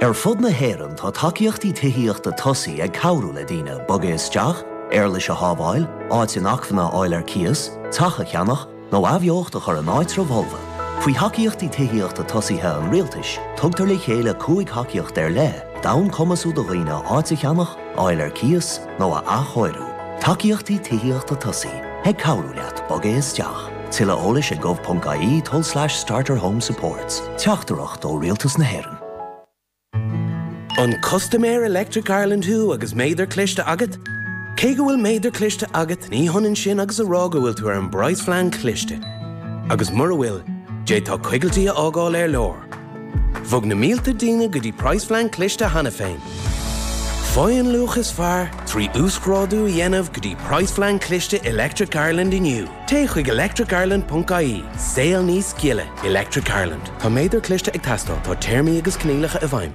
Ar fud na hÉireann tá tacaíochtaí tithíochta tosaigh ag cabhrú le daoine bogadh isteach, éarlais a shábháil, áit inacmhainne a fháil ar cíos, teach a cheannach, nó athbheocht a chur in áitribh fholmha. Faoi thacaíochtaí tithíochta tosaigh an Rialtais, tugtar le chéile cúig thacaíocht ar leith d'fhonn cumasú do dhaoine áit a cheannach, a fháil ar cíos, nó a athchóiriú, tacaíochtaí tithíochta tosaigh ag cabhrú leat bogadh isteach, tuilleadh eolais ag gov.ie tulslais starterhomesupports, Teachtaireacht ó Rialtas na hÉireann. An custaiméir Electric Ireland thú agus méadar cliste agat? Cé go bhfuil méadar cliste agat, ní hionann sin agus a rá go bhfuil tú ar an bpraghas-phlean cliste. Agus mura bhfuil, d'fhéadfá coigiltis a fhágáil ar lár. Bhog na mílte daoine go dtí praghas-phlean cliste cheana féin. Faigh an luach is fearr trí uasghrádú a dhéanamh go dtí praghas-phlean cliste Electric Ireland inniu. Téigh chuig electricireland.ie. Saol níos gile, Electric Ireland. Tá méadar cliste ag teastáil, tá téarmaí agus coinníollacha i bhfeidhm.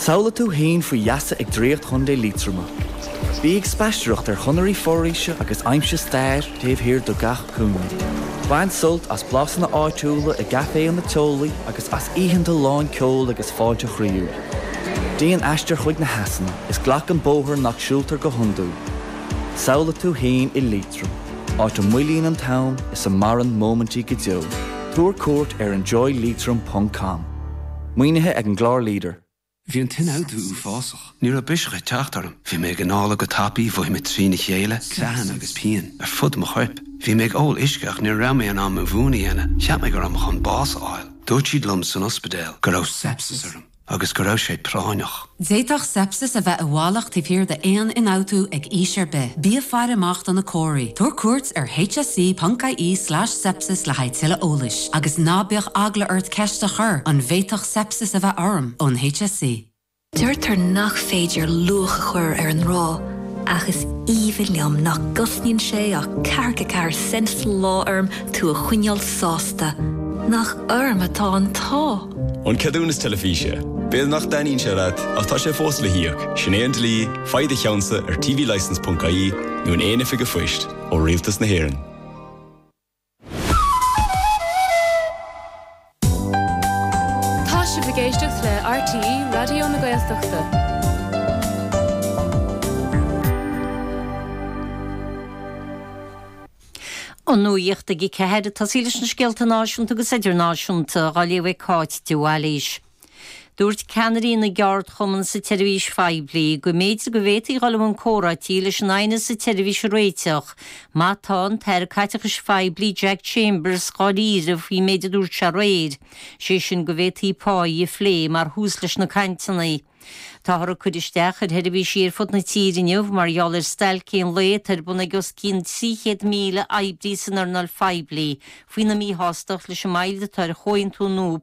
Samhlaigh tú féin faoi gheasa ag draíocht Chontae Liatroma. Bí ag spaisteoireacht ar chonairí foraoise agus aimsigh stair taobh thiar de gach cúinne. Bain sult as blasanna áitiúla i gcaiféanna teolaí agus as oícheanta lán ceoil agus fáilte chroíúil. Déan aistear chuig na heasanna is glac an bóthar nach siúltar go hiondúil. Samhlaigh tú féin i Liatroim, áit a moillíonn an t-am is a maireann móimintí go deo. Tabhair cuairt ar enjoyleitrim.com. Maoinithe ag an gclár leader. Bhí an t-ionfhabhtú uafásach. Ní raibh biseach ag teacht orm. Bhí mé ag análú go tapa, mhothaigh mé trína chéile, creathanna agus pian ar fud mo choirp. Bhí mé ag ól uisce ach ní raibh mé in ann mo mhún a dhéanamh. Cheap mé go raibh mé chun bás a fháil. Dúirt siad liom san ospidéal go raibh seipsis orm agus go raibh sé práinneach. D'fhéadfadh seipsis a bheith i bhfalach taobh thiar d'aon ionfhabhtú ag aois ar bith. Bí ag faire amach do na comharthaí. Tabhair cuairt ar hse.ie slash sepsis le haghaidh tuilleadh eolais. Agus ná bíodh eagla ort ceist a chur, an bhféadfadh seipsis a bheith orm? ón hse. Deirtear nach féidir luach a chur ar an ngrá, ach is aoibhinn liom nach gcosnaíonn sé ach ceathracha ceathair cent sa lá orm tú a choinneáil sásta nach orm atá an t-ádh. An ceadúnas teilifíse. B'fhéidir nach dtaitníonn sé leat, ach tá sé fós le híoc, sin é an dlí, faigh do cheannsa ar tvlicence.ie nó in aon oifig phoist ó Rialtas na hÉireann. Tá sibh ag éisteacht le RTÉ Raidió na Gaeltachta. An nuacht ag a ceathair. Tosaí leis na scéalta náisiúnta agus idirnáisiúnta, á léamh ag Cáit de Bhailís. Dúirt ceannairí na gceardchumann sa tseirbhís phoiblí go mb'fhéidir go bhféadfaí dhul chun comhráití leis an aighneas sa tseirbhís a réiteach, má tá an tAire Caiteachais Phoiblí Jack Chambers dháiríre faoin méid a dúirt sé aréir, sé sin go bhféadfaí pá a phlé mar thús leis na cainteanna. Táthar ag cur isteach ar sheirbhísí ar fud na tíre inniu mar gheall ar stailc aon lae atá ar bun ag os cionn 300,000 oibrí san earnáil phoiblí faoina míshástacht leis an moill atá ar chomhaontú nua